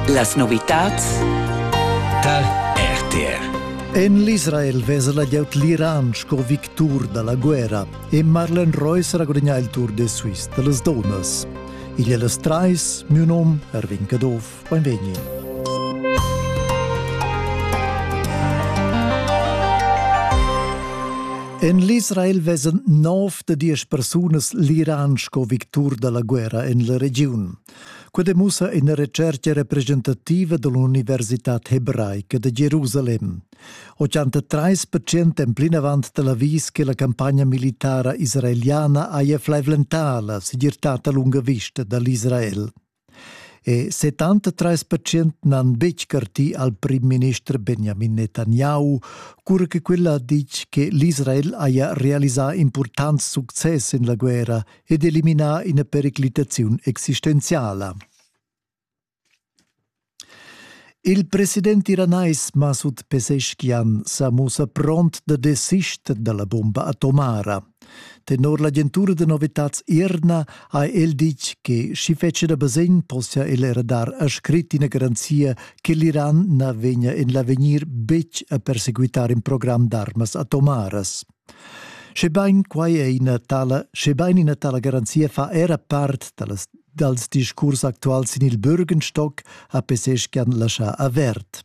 Las novitads da RTR En l'Israel vesa la glieud l'Iran sco victur da la guerra e Marlen Reus ragudigna il Tour de Suisse da las donas. Igl è las trais, mio nom Erwin Caduff, benvegni. En l'Israel vesan nov da diesch persunas l'Iran sco victur da la guerra en la regiun. Quai demussa ina recerca representativa da l'Universitad hebraica da Jerusalem. 83 percent èn plinavant da l'avis che la campagna militara israeliana haja flaivlentà la segirtad a lunga vista da l'Israel. E 73 percent n'han betg cartì al prim-minister Benjamin Netanyahu, cura che quella ha ditg che l'Israel haja realisà impurtants success en la guerra ed eliminà ina periclitaziun existenziala. Il president iranais Masud Pezeshkian sa mussa pront da desister dalla bomba atomara. Tenor l'agentura da novitads Irna ha el ditg che sch'i fetschia da basegn possia el era dar a scrit ina garanzia che l'Iran na vegnia en l'avegnir betg a perseguitar in program d'armas atomaras. Schebain quai è ina tala, schebain ina tala garanzia fa era part dallas, dals discurs actuals sin il Bürgenstock, ha Peseschian laschà avert.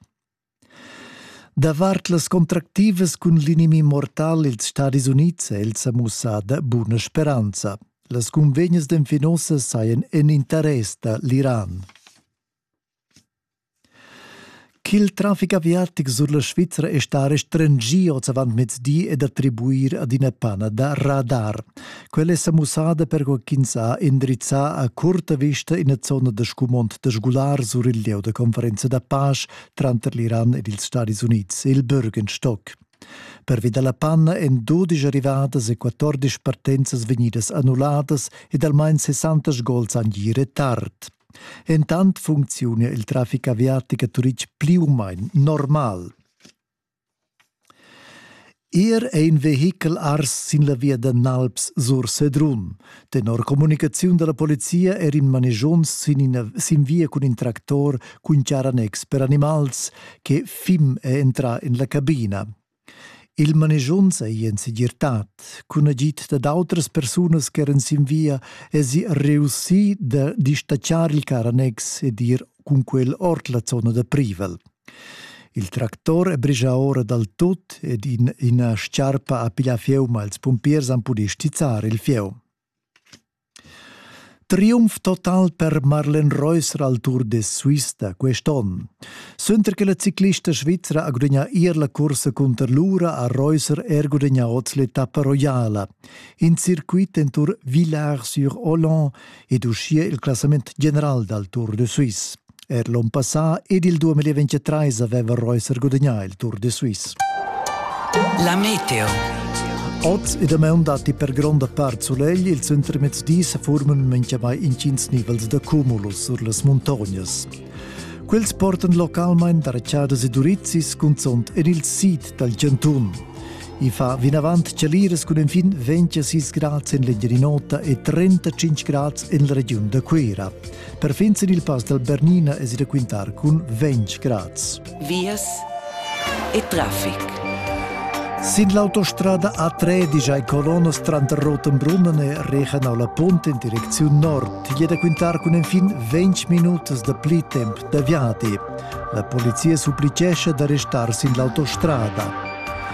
Davart las contractivas cun l'inimi mortal ils Stadis Unids è el sa mussada buna speranza. Las cunvegnas d'enfinosas sajan en interess da l'Iran. Ch'il trafic aviatic sur la Svizra è stà restringì oz avant mezdi è d'attribuir ad ina pana da radar. Quella è sa mussada perquai ch'ins ha indrizzà a curta vista ina zona da scumond da sgular sur il lieu da conferenza da pace tranter l'Iran ed ils Stadis Unids, il Bürgenstock. Pervi da la panna èn dudisch arrivadas e 14 partenza vegnidas annulladas ed almain 60 sgols han gì retard. Entant funcziuna il traffic aviatic a Turitg pli u main normal. Er è in vehichel ars sin la via da Nalps sur Sedrun. Tenor communicaziun da la polizia er in manegions sin, ina, sin via cun in tractor cun charanex per animals che fim è entrà en la cabina. Il manischunz ei en segirtad. Cun agid dad autras persunas che eran sin via esi reussì da distatschar il car annex ed ir cun quel ord la zona da privel. Il tractor è brigia ora dal tut ed in, ina sciarpa ha piglià fieu, ma ils pumpiers han pudì stizzar il fieu. Triumf total per Marlen Reusser al Tour de Suisse da quest'onn. Suenter che la ciclista svizra ha gudagnà ier la cursa cunter l'ura ha Reusser er gudagnà oz l'etappa roiala. In circuit en Tour Villars-sur-Olon ed uschia il classament general dal Tour de Suisse. Er l'on passà ed il 2023 aveva Reuters gudagnà il Tour de Suisse. La meteo. Oz e damaun datti per gronda part sulegl, il centremezdi sa forman mengiamai intgins nivels da cumulus sur las muntognas. Quels portan localmain da rachadas e durizis, cunzont en il sid dal Giantun. I fa vinavant chaliras cun enfin 26 grads en l'Engiadin'Ota e 35 grads en la regiun da Cuira. Perfin sin il pass dal Bernina es i raquintar cun ventg grads. Vias e traffic. Sin l'autostrada A3 digiai Colonas tranter Rotenbrunnen e Regenau la Punt in direcziun nord è da quintar cun enfin 20 minutas da pli temp da viadi. La polizia supplicescha da restar sin l'autostrada.